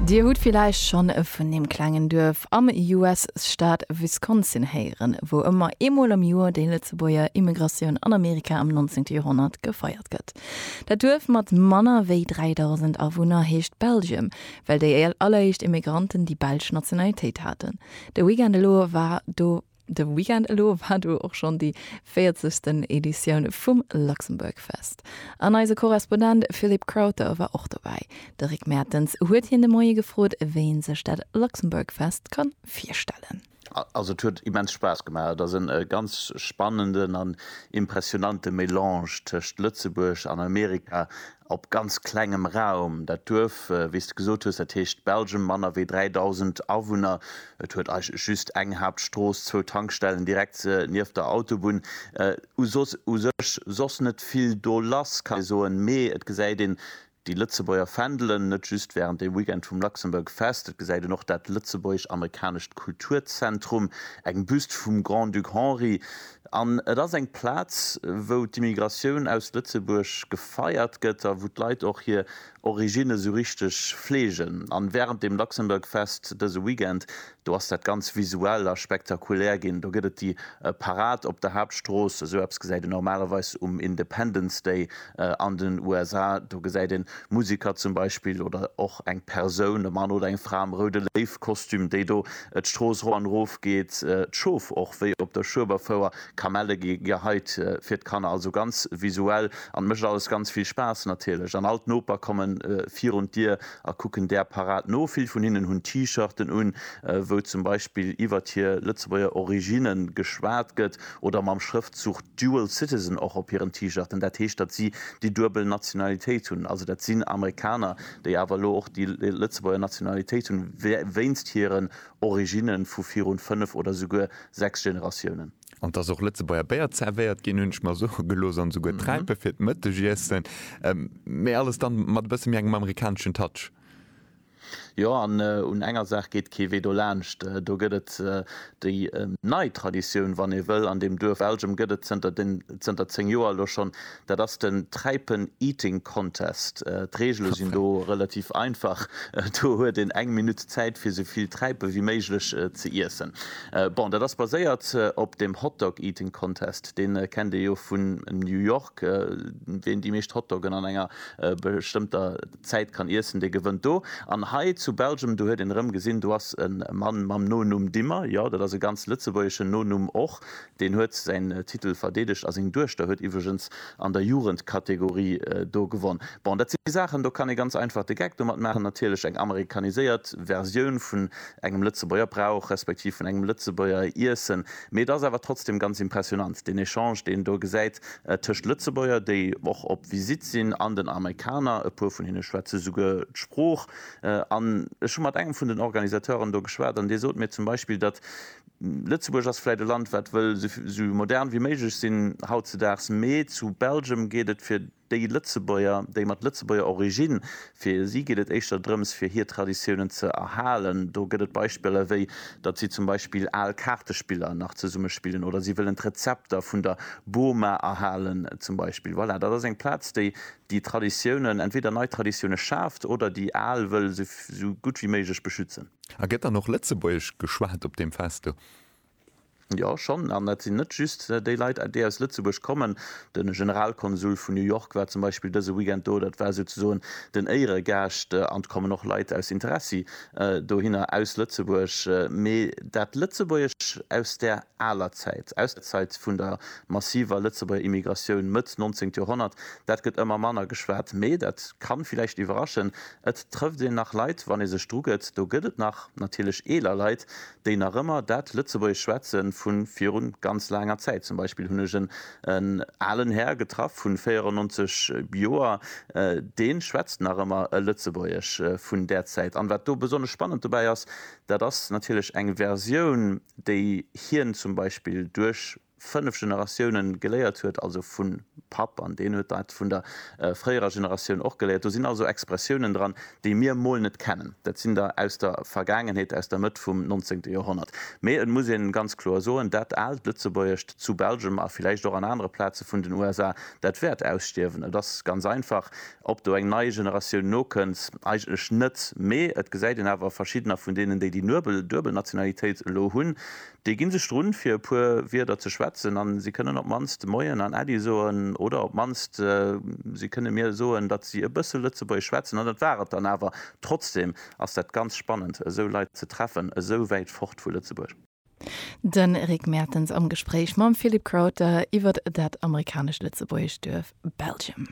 Dir hutt villäicht schonn vun deem klengen Duerf am US-Staat Wisconsin héieren, wou ëmmer eemol am Joer déi Lëtzebuerger Immigratioun an Amerika am 19. Joerhonnert gefeiert gëtt. Dat Duerf mat manner wéi 3.000 Awunner heescht Belgium, well déi alleréischt Immigranten déi belsch Nationalitéit haten. De Weekend elo war do De Weekend elo war du och schonn déi 40. Editioun vum Luxembourg Fest. An eise Korrespondent Philippe Crowther war och dobäi. De Rick Mertens huet hien de Moie gefrot, wéi ee sech dat Luxembourg Fest ka virstellen. Also et huet immens Spaass gemaach. Et ass e ganz spannenden an impressionante Melange tëscht Lëtzebuerg an Amerika. Op ganz klengem Raum, dat Duerf, wéi s de gesot hues, dat heescht Belgium, manner wéi 3.000 Awunner. Et huet eigentlech just eng Haaptstrooss, zwou Tankstellen direkt nieft der Autobunn u soss. U sech soss net vill do lass, kann ee soen. Mee et gesäit een déi Lëtzebuerger Fändelen, net just während dem Weekend vum Luxembourg Fest. Et gesäit een och dat lëtzebuergesch-amerikanescht Kulturzentrum, eng Büst vum Grand-Duc Henri, An et ass eng Plaz, wou d'Immigratioun aus Lëtzebuerg gefeiert gëtt a wou d'Leit och hir Originne sou richteg fleegen. An wärend dem Luxembourg Fest dëse Weekend, do ass dat ganz visuell a spektakulär ginn. Do gëtt et déi Parad op der Haaptstrooss, sou eppes gesäit een normalerweis um Independence Day An den USA, do gesäit een Musiker zum Beispill oder och eng Persoun, e Mann oder eng Fra am roude Léiw-Kostüm, déi do d'Strooss ro an erof geet, d'Schof och wéi op der Schueberfouer, Kamelle gi geheit fir d'Kanner, also ganz visuell an mécht alles ganz vill Spaass natierlech. An all d'Noper komme virun d'Dier a kucken där Parad no. Vill vun hinnen hunn T-Shirten un, wou zum Beispill iwwert hir Lëtzebuerger Originne geschwat gëtt oder mam Schrëftzuch Dual Citizen och op hiren T-Shirten, dat heescht, datt si déi duebel Nationalitéit hunn. Also dat sinn Amerikaner, déi awer elo och déi Lëtzebuerger Nationalitéit hunn, wéinst hiren Originne vu virun fënnef oder souguer sechs Generatiounen. An datt och Lëtzebuerger Béier zervéiert ginn, hunn ech mer soe gelooss, an souguer Träipe fir d'Mëttegiessen, mä alles dann mat e bësse méi engem amerikaneschen Touch. Jo, an un enger Saach geet kee Wee dolaanscht, do gëtt et déi nei Traditioun, wann ee wëll, an deem Duerf Elgem gëtt et zënter 10 Joer elo schonn, dat ass den Träipen Eating Contest. D'Reegele sinn do relativ einfach, do huet een eng Minutt Zäit fir sou vill Träipe wéi méiglech ze iessen. Bon, dat ass baséiert op dem Hot Dog Eating Contest, dee kennt ee jo vun New York, ween déi meescht Hot Doggen an enger bestëmmter. D'Zäit kann iessen, dee gewënnt do. An hei zu Belgium, do huet een erëm gesinn, do ass e Mann mam Nonumm Dimmer, jo, dat ass e ganz lëtzebuergeschen Nonumm och, deen huet säin Titel verdeedegt a seng Duechter huet iwwregens an der Jugendkategorie do gewonn. Bon, dat si Saachen, do kann ee ganz einfach de Geck domat maachen. Natierlech eng amerikaniséiert Versioun vun engem Lëtzebuerger Brauch, respektiv vun engem Lëtzebuerger Iessen, mee et ass awer trotzdem ganz impressionant, deen Echange, deen een do gesäit Tëscht Lëtzebuerger, déi och op Visitt sinn, an den Amerikaner, e puer vun hinne schwätze souguer d'Sprooch. An ech hu mat engem vun den Organisateuren do geschwat, an dee sot mir zum Beispill, datt Lëtzebuerg ass vläicht e Land, wat wëll esou modern wéi méiglech sinn hautzedaags, mee zu Belgium geet et fir déi Lëtzebuerger, déi mat Lëtzebuerger Origine Fir si geet et éischter drëms, fir hir Traditiounen ze erhalen. Do gëtt et Beispiller, wéi datt si zum Beispill al Kaartespiller nach zesumme spillen oder si wëllen d'Rezepter vun der Boma erhalen zum Beispill. Voilà, dat ass eng Plaz, déi déi Traditiounen, entweder nei Traditioune schaaft oder déi al wëll esou gutt wéi méiglech beschützen. A gëtt dann och Lëtzebuergesch geschwat op deem Fest do? Jo, schonn. An dat sinn net just déi Leit, déi aus Lëtzebuerg kommen. De Generalkonsul vun New York war zum Beispill dëse Weekend do. Dat war souzesoen den Éieregaascht. An et kommen och Leit aus Interessi dohinner aus Lëtzebuerg. Mee dat Lëtzebuergesch aus där aler Zäit, aus der Zäit vun der massiver Lëtzebuerger Immigratioun Mëtt 19. Joerhonnert, dat gëtt ëmmer manner geschwat. Mee dat ka villäicht iwwerraschen, et trëfft een nach Leit, wann ee sech drugëtt. Do gëtt et nach natierlech eeler Leit, déi nach ëmmer dat Lëtzebuergesch schwätze vu virun ganz laanger Zäit. Zum Beispill hunn ech en alen Här getraff vun 94 Joer, dee schwätzt nach ëmmer e Lëtzebuergesch vun där Zäit. An wat do besonnesch spannend dobäi ass, dat ass natierlech eng Versioun, déi hien zum Beispill duerch. fënnef Generatiounen geléiert huet, also vun Papp an deen huet dat vun der fréierer Generatioun och geléiert. Do sinn also Expressiounen dran, déi mir mol net kennen. Dat sinn der aus der Vergaangenheet, aus der Mëtt vum nonzéngte Joerhonnert. Mee et muss een ganz kloer soen, dat aalt Lëtzebuergescht zu Belgem a villäicht och an anere Plaze vun den USA, dat wäert ausstierwen. Et ass ganz einfach, ob do eng nei Generatioun nokënnt, eigentlech net. Mee et gesäit een awer a verschiddener vun deenen, déi déi duebel Nationalitéit elo hunn, Déi ginn sech drun, fir e puer Wierder ze schwätzen, an si kënnen op mannst Moien an Äddi soen, oder op mannst si kënne mir soen, datt si e bësse Lëtzebuergesch schwätzen. An dat war et dann awer. Trotzdem ass dat ganz spannend, esou Leit ze treffen, esou wäit fort vu Lëtzebuerg. De Rick Mertens am Gespréich mam Philippe Crowther iwwert dat amerikanescht-lëtzebuergescht Duerf Belgium.